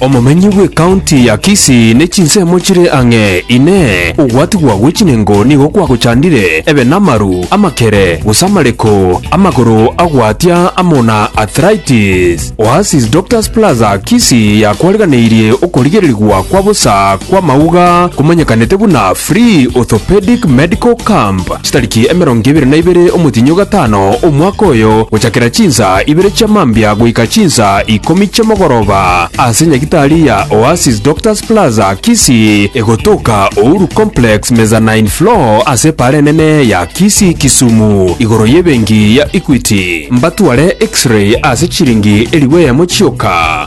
Omomenyi bw'ekaunti ya Kisii ne chinsemo chire ang'e, Inee, ogwatigwa gwe chinengo nigo kwagochandire ebe namaru, amakere, gose amareko, amagoro agwatia amo na arthritis? Oasis Doctors Plaza Kisii yakwariganeirie okorigererigwa kwa bosa kw'amauga komanyekanete buna Free Orthopedic Medical Camp. Chitariki emerongo ebere na ibere omotienyi o gatano omwaka oyo, gochakera chinsa ibere chia mambia goika chinsa ikomi chi'omogoroba, ase nyagitari ya Oasis Doctors Plaza, Kisii, egotoka Uhuru Complex, Mezzanine Floor, ase epaara enene ya Kisii, Kisumu, igoro y'ebenki ya Equity. Mbatware X-ray ase chiringi elifu eyemo chioka.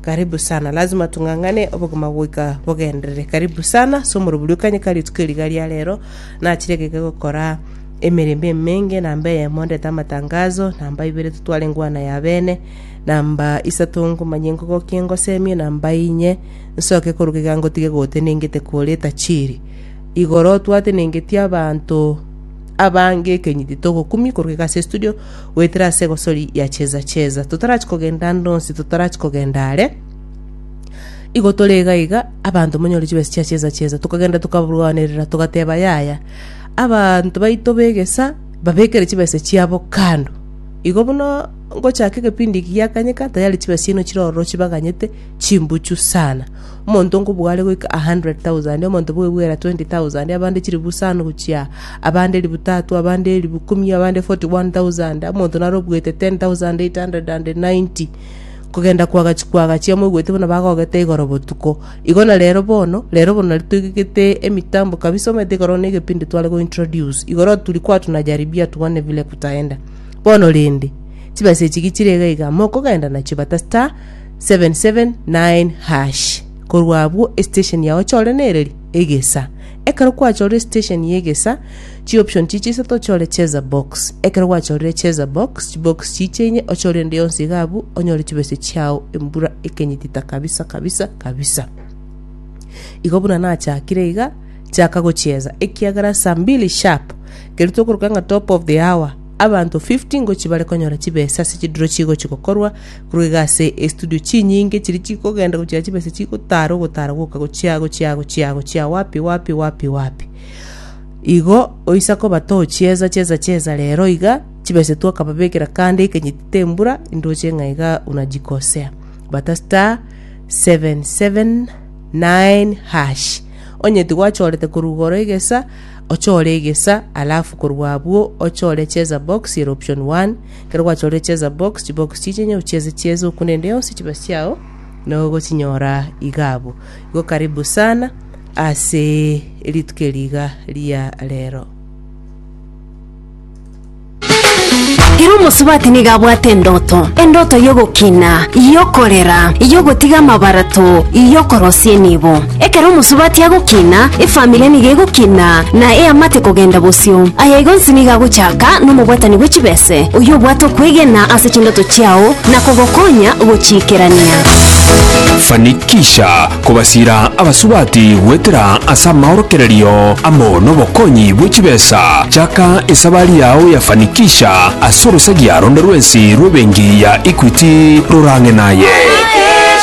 Karibu sana, lazima tung'ang'ane obogima goika bogenderere. Karibu sana ase omorobori o Kanyika rituko eri riga ria rero. Nachire egeke gokora emerembe emenge, namba eyemo ndete amatangazo, namba ibere totware engwana ya bene, namba isato ngomanye ngogokie ngosemie, namba inye nsoke koruga iga ngotige gotenengete kore etachiri. Igoro twatenengetie abanto abange ekenyiti togokumia koruga iga ase estudio, goetera ase egosori ya chieza-chieza, totarachia kogenda ande onsi, totarachia kogenda are, igo tore iga iga, abanto monyore chibesa chia chieza-chieza, tokagenda tokabarwanerera, togateba, Yaya, abanto baito b'egesa babekere chibesa chiabo kando, igo buna ngochaka egepindi eki giakanyeka, tayari chibesa chiaino chire ororo chibaganyete chimbuchu sana. Omonto nkobware goika a hundred thousand, omonto bwebwera twenty thousand, abande chilifu isano gochia aa, abande elifu tatu, abande elifu ikomi, abande forty one thousand, omonto nare obwete ten thousand eight hundred and ninety, kogenda koagachi koagachi, amoigwete buna bagogete igoro botuko. Igo na rero bono, rero bono nari toigegete emitambo kabisa, omanyete ekero ne egepindi tware go introduce, igoro turi kwa tuna jaribia tuone vile kutaenda. Bono rende, chibesa echi ki chire iga iga, mokogenda nachio but star, 779#. Korwa abwo esitesheni yao chore nereri, egesa. Ekero kwachorire esitesheni y'egesa, chioption chichia isato ochore cheza box. Ekero gwachorire cheza box, chibox chichia inye ochore ende yonsi iga abwo onyore chibese chiao embura ekenyitita kabisa kabisa kabisa. Igo buna nachakire iga, chaka gochieza ekiagera saa mbili sharp, ekero tokoroka ng'a top of the hour, abanto 50 ngochia bare konyora chibesa ase chidiro chigochia gokorwa Korwa iga ase estudio chinyinge chiria chikogenda gochia chibesa chigotara ogotara goka gochia gochia gochia gochia wapi wapi wapi wapi igo oisa koba tochieza cheza cheza rero iga chibesa twakababekera kando ekenyiti tembura indoche ng'a iga unajikosea bata star 779 hash onye tigwachorete korwa igoro egesa ochore egesa alafu korwa abwo ochore cheza box ere option 1 Ekero gwachorire cheza box, chibox chi'echi onye ochieze chieze oku nende yonsi chibasi chiao na ogochinyora iga abwo. Igo karibu sana ase rituko eri iga ria rero. Ere omosubati nigo abwate endoto, endoto y'ogokina, y'okorera, y'ogotiga amabarato, y'okorosia enibo. Ekero omosubati agokina, efamiri nigo egokina, na eamate kogenda bosio. Aya igo onsi nigo agochaka nomobwatani bwe chibese, oyio obwate okwegena ase chindoto chiao na kogokonya gochiikerania. Fanikisha kobasiira abasubati goetera ase amaorokererio amo nobokonyi bwe chibesa. Chaka esabari yao ya Fanikisha ase orosagia ronde rwensi rw'ebenki ya Equity rorang'e naye.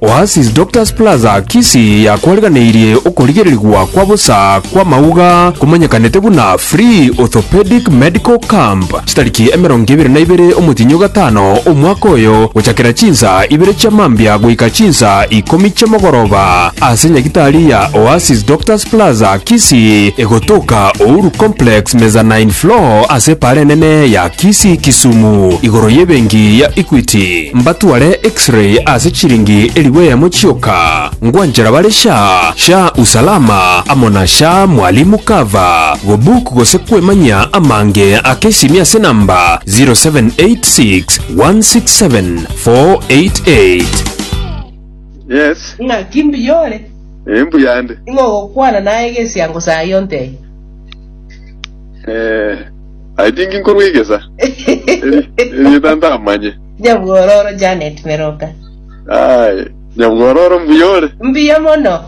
Oasis Doctors Plaza Kisii yakwariganeirie okorigererigwa kwa bosa kw'amauga komanyekanete buna Free Orthopedic Medical Camp chitariki emerongo ebere na ibere omotienyi o gatano omwaka oyo gochakera chinsa ibere chia mambia goika chinsa ikomi chi'omogoroba ase nyagitari ya Oasis Doctors Plaza Kisii egotoka Ouru Complex Mezzanine Floor ase Epaara Enene ya Kisii Kisumu igoro y'ebenki ya Equity. Mbatware X-ray ase chiringi elifu eyemo chioka, ngwanchera bare sha, sha usalama amo na sha mwalimu cover, gobook gose kwemanyia amange ake esimia ase namba 0786 167 488. Yes. Ng'aki mbuya ore? Eh, mbuya ndi. Ing'ogokwana naye egesiango saa yontee. Eh. I think nkorwa egesa. Eri- Erieta ntamanye. Nyabwororo Janet Meroka. Aye. Nyabwororo mbuya ore. Mbuya mono.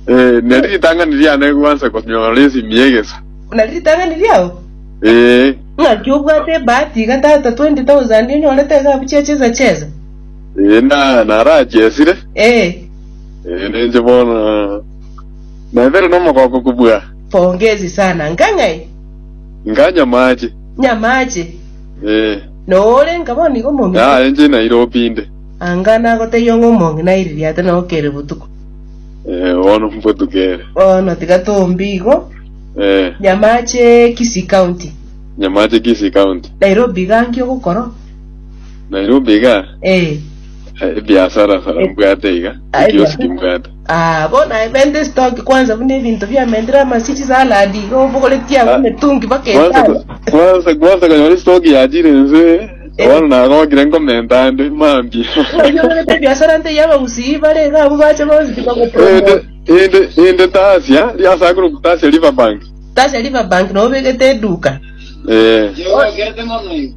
Eh, neri ritang'ani riane gwansa konyorora esimi y'egesa. Buna ritang'ani riao. Eh, Ng'aki obwate ebahati iga tata 20,000 onyorete esabu chia chesa chesa. eh, na narachesire. Eh, Eh, nenche bono. Naibere nomogoko kobua. pongezi sana. Ngang'ai. Nga nyamaache. Nyamaache. Ee. Na ore nka bono igo momito. Na aye nche naire opinde. Anga nagotebia ng'a omong'ina aire riata na okere botuko. Ee, bono mbotuko ere. Bono tiga tombie igo. Ee. Nyamaache Kisii County. Nyamaache Kisii County. Nairobi iga nki ogokora? Nairobi iga? Ee. Ebiasara sara mbwate iga, ekioski mbwate. Aa, bona ebenta esitoki kwansa buna ebinto biamentire amasio chisaladi, iga obogoretie abwo emetungi mpaka Kwansa etano. ko- kwansa kwansa konyora esitoki yachire ense, bono nagokire nkomenta ande mambia. Oonyorerete ebiasara nte y'abagusii bare iga abwo bache bonsi Inde tibagopromota. inde inde tasia riasakire okutasia Riverbank. Tasia Riverbank nobegete eduka. Eh. Oyoogete mono igo.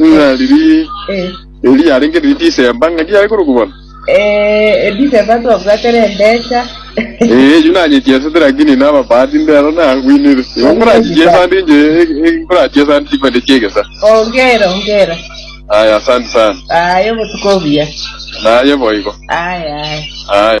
Ng'a riria Eh, erio yarenge riria Disemba, ng'a ndiare korokwa bono. eh, Ediseba twabwate rembecha. Eh, erio nanyechesete lakini naba bahati ndero nagwinire. Igo nkorachichesa ndi nje, nkorachichesa ndi chipande chiegesa. Ongera, ongera. Aya, asante sana. Aye obotuko obuya. Naye boigo. Aye, aye. Aya.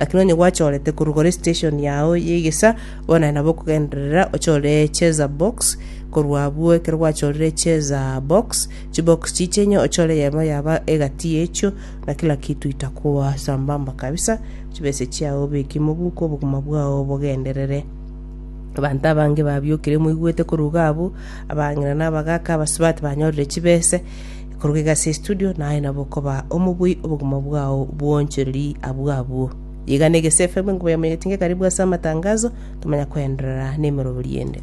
Lakini onye gwachorete korwa gora esiteshoni yao y'egesa, bono aye nabo okogenderera ochore echeza box, korwa abwo ekero gwachorire echeza box, chibox chiche inye ochore eyemo yaba egati y'echio, na kila kitu itakuwa sambamba kabisa, chibese chiao obeke mobuko, obogima bwao bogenderere. Abanto abange babiokire moigwete koruga abwo, abang'ina na abagaaka, abasibati banyorire chibese, Ekoruga iga ase estudio, naye nabo okoba omobui obogima bwao bw'oonchoreri abwo abwo. Iga na Egesu FM, enkuba yamo yatinga ekaribu ase amatangazo, tomanya koenderera nemeroberio ende.